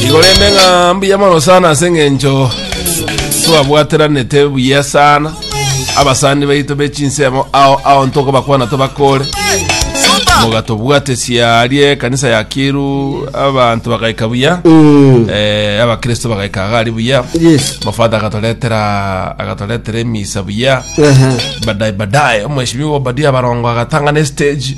igorende ng'a mbuya mono sana ase eng'encho twabwateranete buya sana abasani baito be chinsemo ao ao ntokobakwana tobakore mogatobwatesia arie ekanisa ya kiru abanto bagaika buya eh, abakristo bagaika iga ari buya Yes. mofata agatoretera agatoretera emisa buya Ehe. badaye badaye omweshimiwa obadia barongo agatang'ana estage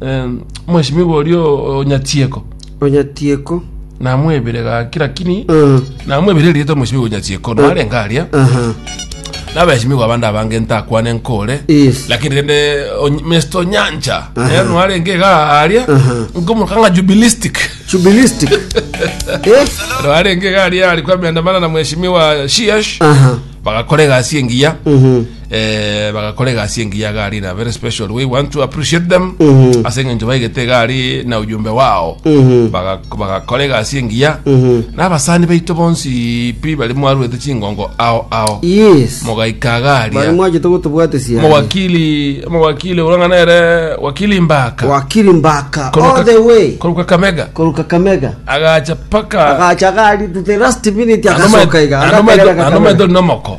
Em, Mheshimiwa oria o- Onyachieko Onyachieko. namwebire gaki lakini Mm. namwebire erieta Mheshimiwa Onyachieko narenga aria Aha. nabeshimiwa abande abange ntakwane nkore Yes. lakini rende Ony- Mr. Onyancha naye nwarenge iga aria nkomoka ng'a jubilistic Jubilistic. Eh? nwarenge iga aria ari kwa miandamano na Mheshimiwa Shiesh Aha. bagakora egasi engiya Mhm. eh, bagakora egasi engiya iga ari na very special we want to appreciate them Mhm. ase eng'encho baigete iga ari na ujumbe wao Mhm. Baga- bagakora egasi engiya Mhm. n'abasani baito bonsi pi bari mwaruete chingongo ao ao yes mogaika bari agaria mwachete gotobwatesia mowakili mowakili urang'ana ere wakili mbaka wakiri mbaka Koruka- all the way koruka kamega koruka kamega agacha paka agacha gari to the last minute agasoka iga agakerera kakamega. anometo nomoko